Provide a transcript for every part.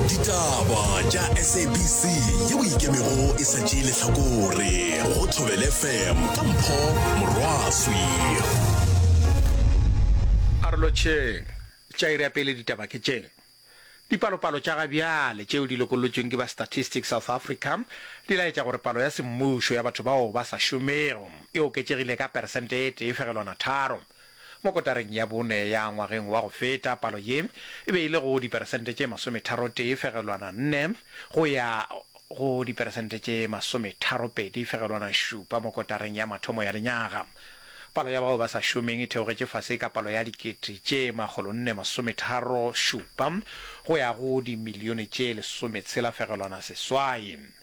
ditaba tša sabc ye o ikemego e sa tšee lehlakore go thobele fm ka mpho morwaswi karolotšheng tša iri ya pele ditaba ke tše Dipalopalo tša ga bjale tšeo di lokolotšweng ke ba Statistics South Africa di laetša gore palo ya semmušo ya batho bao ba sa šomego e oketšegile ka peresente e tee fegelwana tharo. Mo kotareng ya bone ya ngwageng wa go feta, palo ye e be e le go diperesente tše masometharotee fegelwana nne go ya go diperesente tše masometharopedi fegelwana šupa mo kotareng ya mathomo ya lenyaga. Palo ya bao ba sa šomeng e theogetše fase ka palo ya dikete tše makgolonne masometharo šupa go ya go dimilione tše lesometshela fegelwana seswai.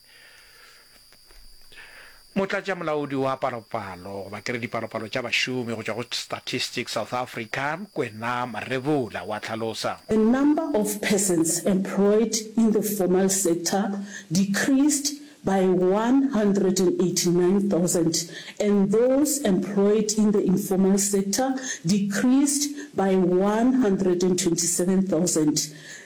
Motlatšamolaodi wa Palopalo goba ke re Dipalopalo tša Bašomi go tšwa go Statistics South Africa, Kwena Marebula o a hlalosa. The number of persons employed in the formal sector decreased by 189,000 and those employed in the informal sector decreased by 127,000.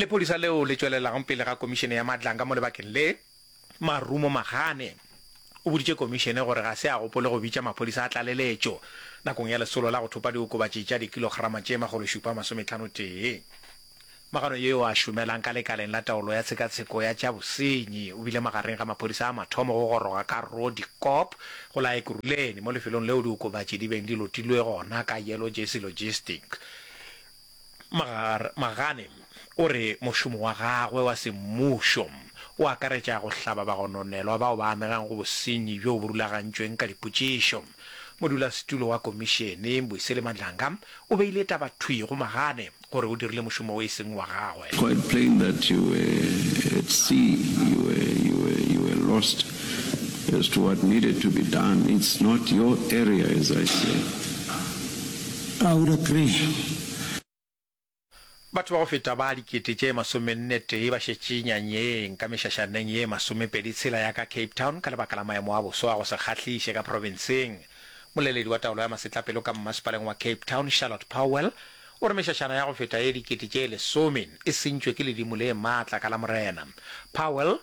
Lephodisa leo le tšwelelago pele ga Komišene ya Matlanga mo lebakeng le, Marumo Magane, o boditše Komišene gore ga se a gopole go bitša maphodisa a tlaleletšo nakong ya lesolo la go thopa diokobatši tša dikilograma tše makgološupa masometlhano tee. Magano yo a šomelang ka lekaleng la taolo ya tshekatsheko ya tša bosenyi o bile magareng ga maphodisa a mathomo go goroga ka Roodekop go la Ekurhuleni mo lefelong leo diokobatši di beng di lotilwe gona ka Yellow Jersey Logistic Magane o re mošomo wa gagwe wa semmušo o akaretša go hlaba bagononelwa bao ba amegang go bosenyi bjoo bo rulagantšweng ka dipotšišo. Modulasetulo wa Komišene, Mbuyiseli Madlanga, o beile taba thwi go Magane gore o dirile mošomo o e seng wa gagwe. Quite plain that you were at sea, you were, you were, you were lost as to what needed to be done. It's not your area as I said. Powder Cream. Batho ba go feta ba dikete tše masomennetee ba šetše nyanyeng ka mešašaneng ye masomepedi tshela ya ka Cape Town ka lebaka la maemo a boso a go se kgahliše ka profenseng. Moleledi wa taolo ya masetlapelo ka mmasepaleng wa Cape Town, Charlotte Powell, o re mešašana ya go feta ye dikete tše lesome e sentšwe ke ledimo le maatla ka Lamorena. Powell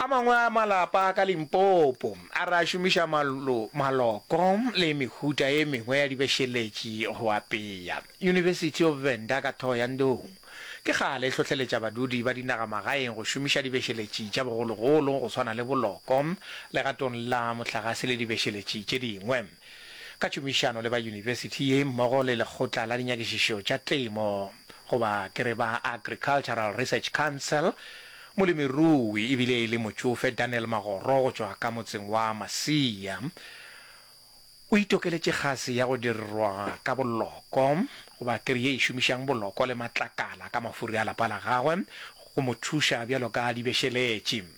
A mangwe a malapa a ka Limpopo a re a šomiša malo, maloko le mehuta e mengwe ya dibešeletši go apea. University of Venda ka Thohoyandou ke kgale e hlohleletša badudi ba dinagamagaeng go šomiša dibešeletši tša bogologolo go swana le boloko legatong la mohlagase le dibešeletši tše dingwe. ka tšhomišano le ba yunibesithi ye mmogo le Lekgotla la Dinyakišišo tša Temo, goba ke re ba Agricultural Research Council, molemirui e bile e le motšofe Daniel Magoro go tšwa ka motseng wa Masia o itokeletše kgase ya go dirwa ka boloko, goba ke re ye e šomišang boloko le matlakala ka mafuri a lapa la gagwe go mo thuša bjalo ka dibešeletši.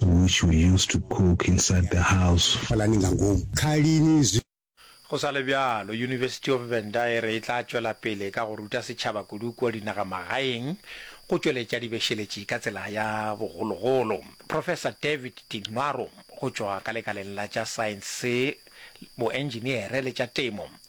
which we used to cook inside the house. Phalani nga ngomu. Kha lini zwi. Go sa le bjalo, University of Venda e re e tla tšwela pele ka go ruta setšhaba kudu kua dinagamagaeng go tšweletša dibešeletši ka tsela ya bogologolo. Professor David Tinwaro go tšwa ka lekaleng la tša saense, boentšiniere le tša temo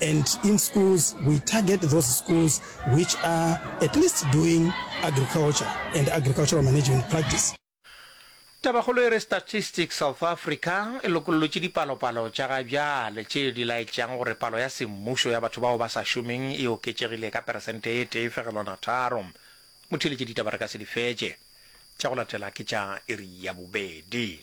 And in schools we target those schools which are at least doing agriculture and agricultural management practice. Tabakgolo e re Statistics South Africa e lokollotše dipalopalo tša ga bjale tše di laetšang gore palo ya semmušo ya batho bao ba sa šomeng e oketšegile ka peresente e tee fegelwana tharo. Motheeletše ditaba re ka se di fetše. Tša go latela ke tša iri ya bobedi.